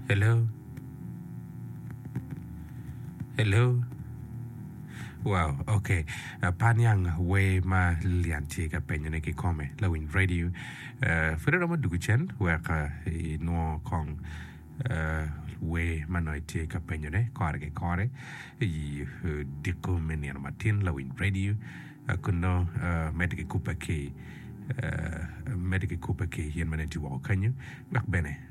Hello? Hello? Wow, ok. Uh, pa niang wer ma Lilian tye ka penyone ki kome, lawiny radio. Uh, pud romo dugu cen wek uh, inwo kong uh, wer ma nongo itye ka penyone kore ki kore i uh, diko me nino matin lawiny radio. Uh, kun nongo uh, medde ki kubbe ki uh, medde ki kubbe ki yen ma nongo itye woko kanyo wek bene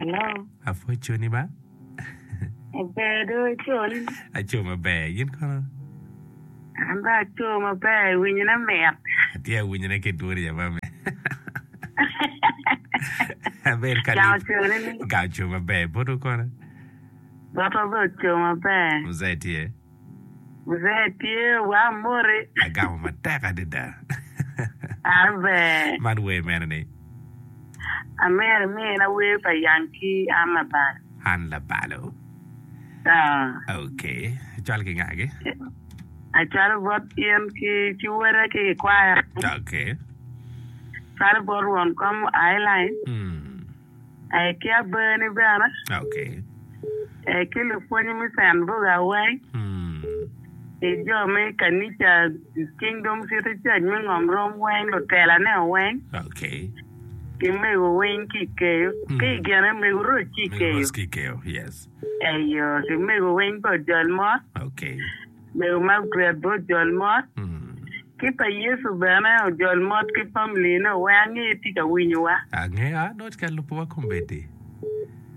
Hello. Apwony coni ba. Ber do coni. Aco maber. Yin kono? An ba aco maber. Winyone mit. Atye awinyone ki dwoni ya mami. Aber ka Gang ocone ni. Gang oco maber. Boto kono? Boto be oco maber. Mzee tye? Mzee tye wa moti. Agamo matek adada. Amen. Man wer mene ni? Amer me en awer pa Young ki Ann Labalo. Ann Labalo. Aa. Ok. Cwal ki nga gi? Acwalo bot in ki ci wota ki i kwaya. Ok. Cwalo bot Won Kom Ailany. Mm. aye ki abeni bene, Okay. aye ki lupwony me canduk aweng, Hmm. ki jo me kanica Kingdom City Church me Ngom Rom weng, lutelane weng, Okay. ki mego weng ki i keyo, Mm. ki i gine mego roc ki i Mego keyo. Ross Kikeo. Yes. Eyo, ki mego weng pa ojol mot. Okay. Me rumak dwyer bot jol mot. Ki pa Yecu bene ojol mot ki family ne wek ange itye ka winyo wa. Angeyo a nongo tye ka lubo wa kombeddi.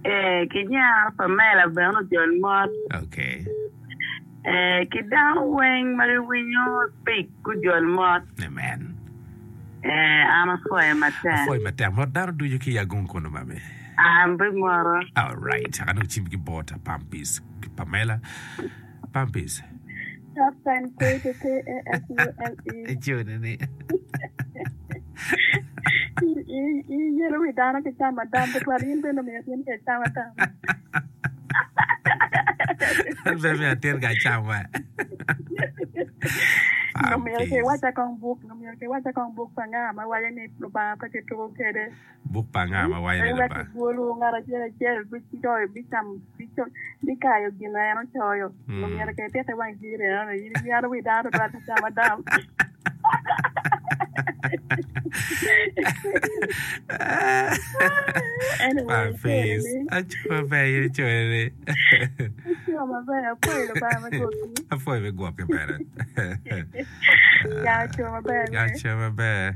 Eh ki nyar Pamela bene ojol mot. Okay. Eh ki dano weng ma gi winyo speak gujol mot. Amen. Eh an apwoye matek. Apwoye matek mot dano ducu ki yagung kunu mami. An be moro. Alright, aka nongo cim ki bot Pampis ki Pamela. Pampis. Soft and cozy P A S U L E. Ecune ni. I- i- i yelo wi dano ki camo adam tutwal in bene omiyo atin ka icamo adam An pe mi atin ka cama. nomyero kiwaca kong buk nomyero kiwaca kong buk pa nga ma waco ni lubanga pe kituko kwede Buk pa anga ma waco ni Lubanga? Ewek ibwolwu, ngat acel acel bicoyo, bicamo, bico, bikayo gin ma en ocoyo. Ngo myero ka ipite wang jiri ni eno ni in inyano wi dano twal ki cam adam? Anyway, acoyo ni. Aco maber in icoyo ni. Aco maber, apwoyo Lubanga me gwokki. Apwoyo me gwokki bene. Ya, aco maber. Aco maber.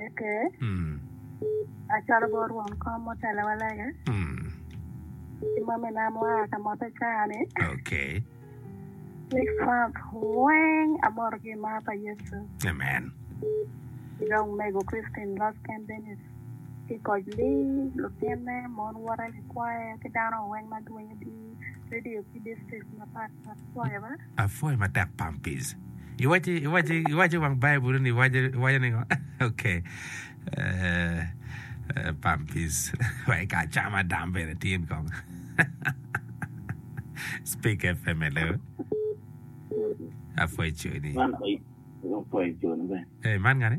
Eke acalo bot rwom kom mutelewa lege ki mamina mua ka mote caa-ni. Okay. Ni Frank weng amoto ki i mar pa Yecu. Amen. Ki dong omego Christine Losken Dennis ki koc Lee, lutinne, mon wote, likwayo ki dano weng ma dwinyo di redio ki district mapat pat. Pwoya ba. Apwoyo matek Pampis. Iwaci, iwaci, iwaci wang Bible ni iwaci, iwaci ni okay. Uh, uh, Pampis. Wai ka chama dam bene tin kong. Speak FM hello. Apwoyo choni. Man oy- opwoyo cone bene. Eh, man ngani?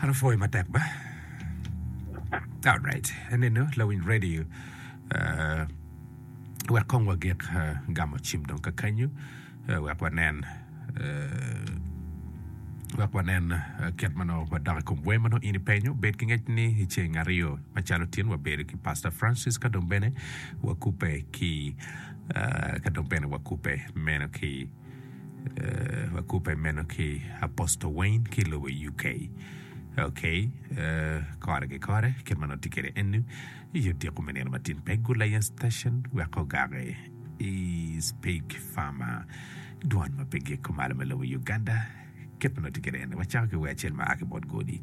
An apwoyo matek ba. Alright, enenu lawiny radio uh, wek kong wagik uh, gamo cim dong kakanyo uh, wek wanen uh, wek wanen uh, kit ma nongo wadok i kom wer ma nongo in ipenyo. Bed ki ngec ni i ceng aryo macalo tin wabedo ki Pastor Francis ka dong bene wakubbe ki uh, ka dong bene wakubbe meno ki Wakubbe meno ki Apostle Wayne ki lobo UK. Ok, kore ki kore, kit ma nongo tye kwede eni, i odiko me nino matin pe gul aye station wek ogaki i Speak Farmer, dwan ma pe giko malo me lobo Uganda. Kit ma nongo tye kwede eni, wacako ki wer acel ma a ki bot Godi.